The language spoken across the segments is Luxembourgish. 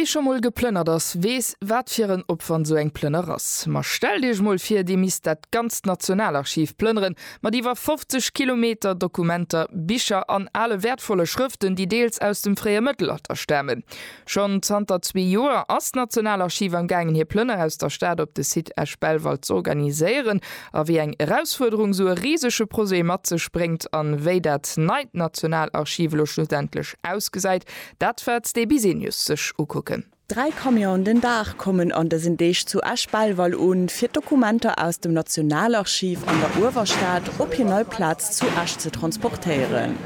Wee scho mol geplënnert ass, weess, wat fir en Opwand sou eng Plënner ass. Ma stellt Iech mol vir, Dir misst dat ganzt Nationalarchiv plënneren, mat iwwer 50 Kilometer Dokumenter, Bicher an ale wäertvolle Schrëften, déi deels aus dem fréie Mëttelalter stamen. Schonn zanter zwee Joer ass d'Nationalarchiv am gaangen, hir Plënner aus der Stad op de Site Esch-Belval z'organiséieren. a wéi eng Erausfuerderung sou e risege Projet mat sech bréngt an wéi dat neit Nationalarchiv elo schlussendlech ausgesäit, dat wäert de Bisenius sech ukucken. Dräi Camionen den Dag kommen an dësen Deeg zu Esch-Belval un, fir d'Dokumenter aus dem Nationalarchiv an der Uewerstad op hir nei Plaz zu Esch ze transportéieren.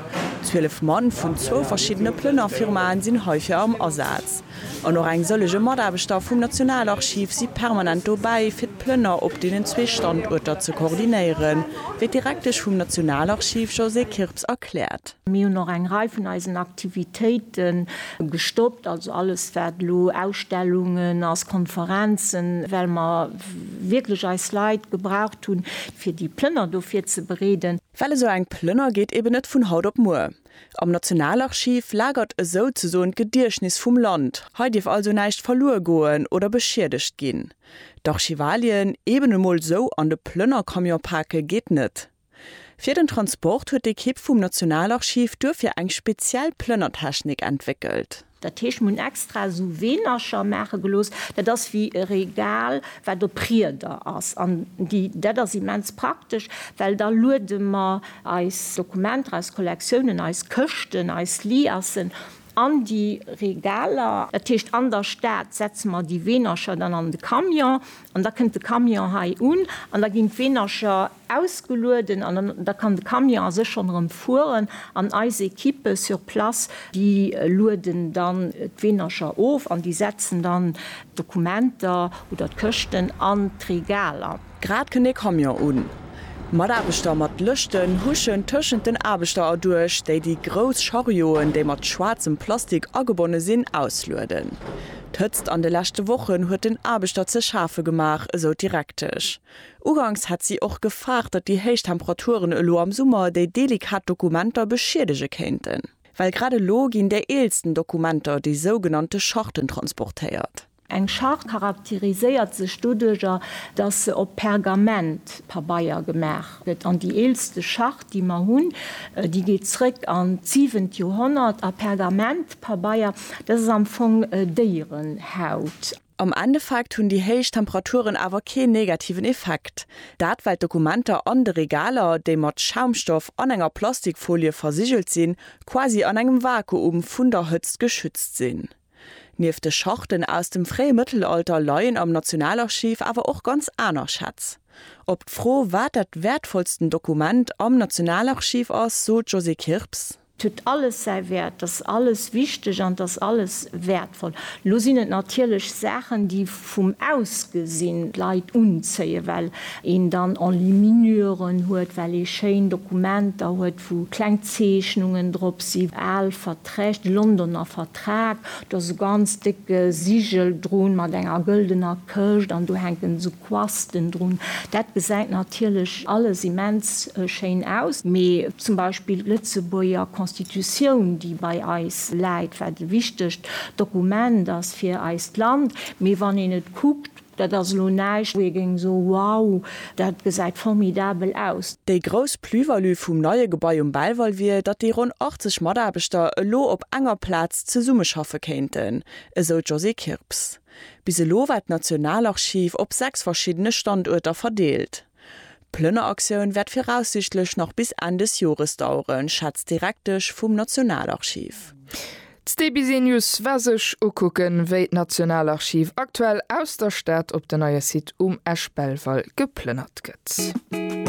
Zwielef Mann vun zwou verschiddene Plënnerfirmae sinn heifir am Asaz. An och eng sëllege Mataarbechter vum Nationalarchiv si permanent dobäi, fir d'Plënner op deenen zwee Standuerter ze koordinéieren, wéi d'Direktesch vum Nationalarchiv Josée Kirps erkläert. Mir hunn och eng Rei vun eisen Aktivitéite gestoppt, also alles, wat elo Ausstellungen ass, Konferenzen, well mer wierklech eis Leit gebraucht hunn, fir déi Plënner do virzebereeden. Well esou eng Plënner geet eeben net vun haut op muer. Am Nationalarchiv lagert esou ze soen d'Gediechtnis vum Land. Hei dierf also näischt verluer goen oder beschiedegt ginn. D'Archivalien eben emol esou an de Plënnercamion pake geet net. Fir den Transport huet d'Ekipp vum Nationalarchiv duerfir eng speziell Plënnertechnik entwéckelt. Dat heescht, mir hunn extra esou Weenercher maache gelooss, dat ass wéi e Regal, wat op Rieder ass. An déi, dat ass immens praktesch, well da luede mer eis Dokumenter, eis Kollektiounen, eis Këschten, eis Liassen an déi Regaler. Dat heescht, an der Stad setze mer déi Weenercher dann an de Camion an da kënnt de Camion hei un an da ginn d'Weenercher ausgelueden an da kann de Camion a sech schonn erëm fueren an eis Equippe sur place, déi lueden dann d'Weenercher of an déi setzen dann d'Dokumenter oder d'Këschten an d'Regaler. Grad kënn ee Camion un. Mataarbechter mat Lëschten huschen tëschent den Aarbechter erduerch, déi déi grouss Charioen, déi mat schwaarzem Plastik agebonne sinn, auslueden. D'Hëtzt an de leschte Wochen huet den Aarbechter ze schafe gemaach, esou d'Direktesch. Uganks hätt si och gefaart, datt déi héich Temperaturen elo am Summer déi delikat Dokumenter beschiedege kéinten. Well grad elo ginn déi eelsten Dokumenter, déi sougenannte Charten, transportéiert. Eng Charte charakteriséiert sech doduercher, datt se op Pergament, Pabeier, gemaach gëtt. An déi eelste Charte, déi mer hunn, déi geet zréck an d'siwent Joerhonnert. A Pergament, Pabeier, dat ass am Fong Déierenhaut. Am Endeffekt hunn déi héich Temperaturen awer keen negativen Effekt. Dat well d'Dokumenter an de Regaler, déi mat Schaumstoff an enger Plastikfolie versigelt sinn, quasi an engem Vakuum vun der Hëtzt geschützt sinn. Nieft de Charten aus dem fréie Mëttelalter leien am Nationalarchiv awer och ganz aner Schätz. Op d'Fro, wat dat wäertvollsten Dokument am Nationalarchiv ass, sot d'Josée Kirps. 't huet alles säi Wäert, 't ass alles wichteg an 't ass alles wäertvoll. Lo sinn et natierlech Saachen, déi vum Ausgesinn d'Leit unzéien, well een dann Enluminuren huet, well ee schéin Dokumenter huet, wou kleng Zeechnungen drop sinn, al Verträg, de Londoner Vertrag, do ass e ganz décke Sigel drun mat enger gëldener Këscht an do hänken esou Quasten drun. Dat gesäit natierlech alles immens schéin aus. Mee zum Beispill d'Lëtzebuerger Constitutioun, déi bei eis läit, wat e wichtegt Dokument ass fir eist Land. Mee wann een et kuckt, dat ass elo näischt, wou ee géing soen, wow, dat gesäit formidabel aus. Déi grouss Plus-value vum neie Gebai um Belval wier, datt déi ronn 80 Mataarbechter elo op enger Plaz zesummeschaffe kéinten, esou d'Josée Kirps. Bis elo war d'Nationalarchiv op sechs verschiddene Standuerter verdeelt. D'Plënneraktioun wäert viraussiichtlech nach bis Enn des Jores daueren, schätzt d'Direktesch vum Nationalarchiv. D'Cbsnews war sech ukucken, wéi d'Nationalarchiv aktuell aus der Stad op den neie Site um Esch-Belval geplënnert gëtt.